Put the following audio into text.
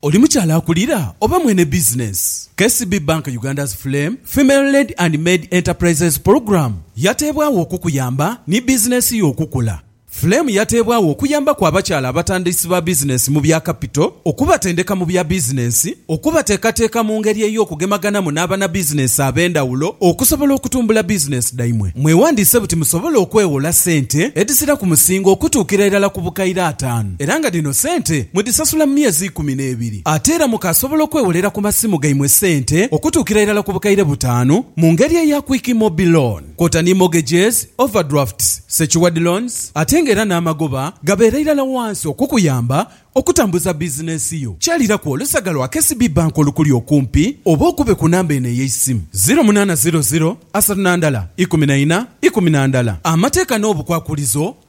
Oli mukyala akulira oba mwene bizinensi? KCB Bank Uganda's Flame Female Led and Maid Enterprises Program yateebwagho okukuyamba ni bizinensi yo okukula. Flame yateebwagho okuyambaku abakyala abatandisi ba bizinensi mu bya kapito, okubatendeka mu bya bizinensi, okubateekateeka mu ngeri ey'okugemaganamu n'abanabizinensi ab'endhawulo okusobola okutumbula bizinensi dhaimwe. Mwewandiise buti musobole okweghola sente edhizira ku musingo okutuukira irala ku bukaire ataanu. era nga dhino sente mudhisasula mu myezi ikumi n'ebiri. Ate era mukaasobola okwewolera ku masimu gaimwe sente okutuukira irala ku bukaire butaanu mu ngeri eya Quick Mobi Loan kwota ni mortgages, overdrafts, secured loans ate nga era n'amagoba gabeera irala wansi okukuyamba okutambuza bizinensi yo. Kyaliraku olusaga lwa KCB Bank olukuli okumpi oba okube ku namba eno ey'eisimu, ziro munaana ziro ziro asatu na ndala ikumi na ina ikumi na ndala. Amateeka n'obukwakulizo